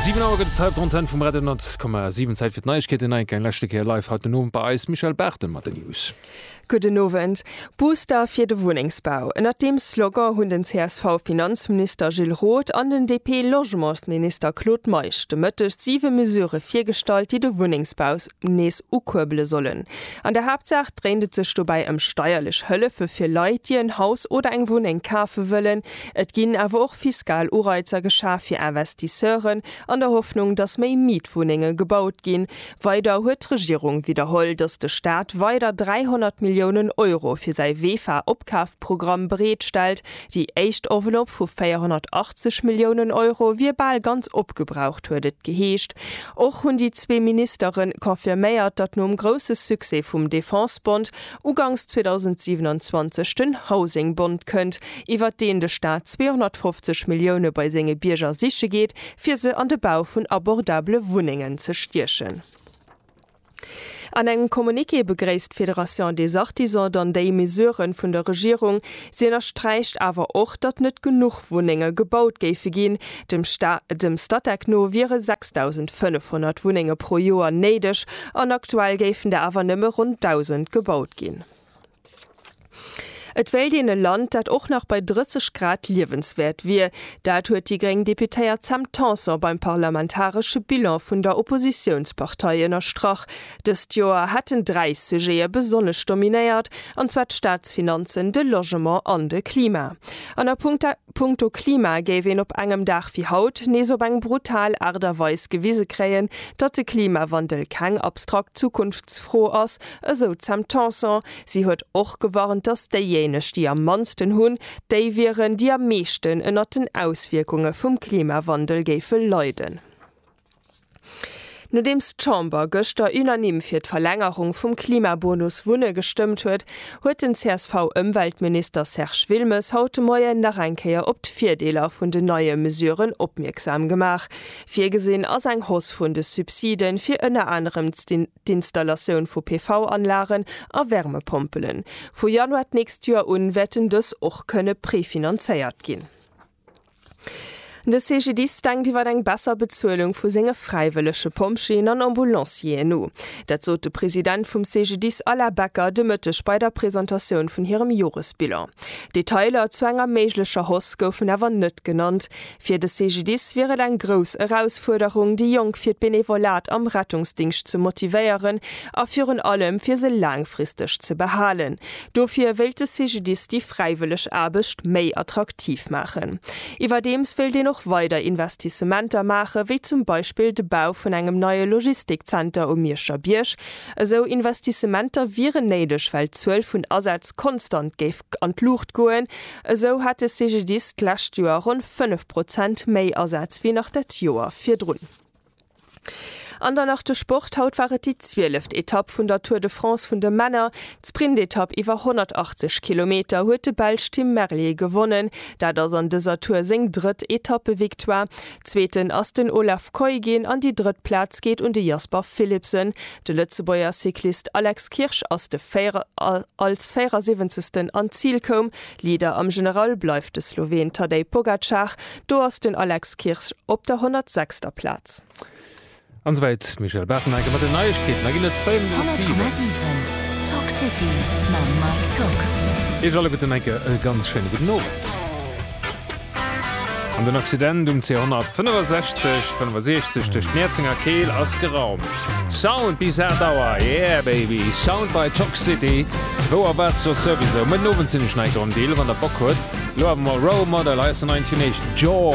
Siwen Auer gëtt et hei op der Antenn vum Radio 10,7. Zäit fir d'Neiegkeeten. Enk eng leschte Kéier live haut den Owend bei eis, Michèle Barthel mat den News. Gudden Owend. Booster fir de Wunnengsbau, ënnert deem Slogan hunn den CSV-Finanzminister Gilles Roth an den DP-Logementsminister Claude Meisch de Mëtteg siwe Mesurë virgestallt, déi de Wunnengsbau nees ukuerbele sollen. An der Haaptsaach dréint et sech dobäi ëm steierlech Hëllefe fir Leit, déi en Haus oder eng Wunneng kafe wëllen. Et ginn awer och fiskal Ureizer geschaf fir Investisseuren, an der Hoffnung, datt méi Mietwunnenge gebaut ginn. Weider huet d'Regierung widderholl, datt de Staat weider 300 Milliounen Euro fir säi Vefa-Opkafprogramm bereet stellt, Déi éischt Enveloppe vu 480 Milliounen Euro wier bal ganz opgebraucht, huet et geheescht. Och hunn déi zwee Ministere confirméiert, datt nom grousse Succès vum Defense-Bond uganks 2027 den Housing-Bond kënnt, iwwert deen de Staat 250 Millioune bei senge Bierger siche geet, fir se an de Bau vun abordabele Wunnengen ze stiechen. An engem Communiqué begréisst d'Fédération des Artisans dann déi Mesure vun der Regierung. Si ënnersträicht awer och, datt net genuch Wunnenge gebaut géife ginn. Dem Statec no wiere 6.500 Wunnenge pro Joer néideg an aktuell géifen der awer nëmme ronn 1.000 gebaut ginn. Et wéilt een e Land, dat och nach bei 30 Grad liewenswäert wier. Dat huet déi gréng Deputéiert Sam Tanson beim parlamentaresche Bilan vun der Oppositiounspartei ënnerstrach. Dëst Joer hätten dräi Sujete besonnesch dominéiert, an zwar d'Staatsfinanzen, de Logement an de Klima. An a Punkto. Punkto Klima géif een op engem Dag wéi haut nees op eng brutal Aart a Weis gewise kréien, datt de Klimawandel keng abstrakt Zukunftsfro ass, esou d'Sam Tanson. Si huet och gewarnt, datt déijéineg, déi am mannsten hunn, déi wieren, déi am meeschten ënnert den Auswierkunge vum Klimawandel géife leiden. Nodeems d'Chamber gëschter unanime fir d'Verlängerung vum Klimabonus Wunne gestëmmt huet, huet den CSV-Ëmweltminister Serge Wilmes haut de Moien nach eng Kéier op d'Virdeeler vun den neie Mesuren opmierksam gemaach. Virgesinn ass eng Hausse vun de Subside fir ënner anerem d'Installatioun vu PV-Anlagen a Wärmepompelen. Vu Januar d'nächst Joer un wäerten dës och kënne prefinanzéiert ginn. De CGDIS denkt iwwer eng besser Bezuelung vu senge fräiwëllege Pompjeeën an Ambulancieren no. Dat sot de President vum CGDIS Alain Becker de Mëtteg bei der Presentatioun vun hirem Joresbilan. Detailer zu enger méiglecher Hausse goufen awer net genannt. Fir de CGDIS wier et eng grouss Erausfuerderung, déi Jonk fir d'Benevolat am Rettungsdingscht ze motivéieren a virun allem fir se laangfristeg ze behalen, Dofir wéilt de CGDIS déi fräiwëlleg Aarbecht méi attraktiv maachen. Iwwerdeems wéilt een och weider Investissementer maachen, wéi zum Beispill de Bau vun engem neie Logistikzenter um Mierscher Bierg. Esou Investissementer wieren néideg, well d'Zuel vun Asätz konstant géif an d'Luucht goen. Esou hat de CGDIS d'lescht Joer ronn 5 Prozent méi Asätz wéi nach dat Joer virdrun. An dann nach de Sport, Haut war et déi zwieleft Etapp vun der Tour de France vun de Männer. D'Sprintetapp iwwer 180 Kilometer huet de Belsch Tim Merlier gewonnen. Dat ass an dëser Tour seng drëtt Etappevictoire. Zweeten ass den Olav Kooij ginn an déi drëtt Plaz geet un de Jasper Philipsen. De Lëtzebuerger Cyclist Alex Kirsch ass de als 74. an d'Zil koum. Leader am General bleift de Sloween Tadej Pogacar, do ass den Alex Kirsch op der 106. Plaz. An souwäit d'Michèle Barthenegger mat den Neiegkeeten. Da ginn et 5 Minutt op 7. 100,7 Talk City mam Mike Tock. Iech alleguerten enke e ganz schéine gudden Owend. An den Occident um C165, 65 duerch d'Nierzenger Keel ass geraumt. Sound bis 8 Auer, yeah baby! Sound by Toxcity, wou a wat soss souwisou. Mëtten Owend sinn ech nei dran, déi 11 an der Bock huet. Lo awer mol Role Model, hei ass den neien Teenage George.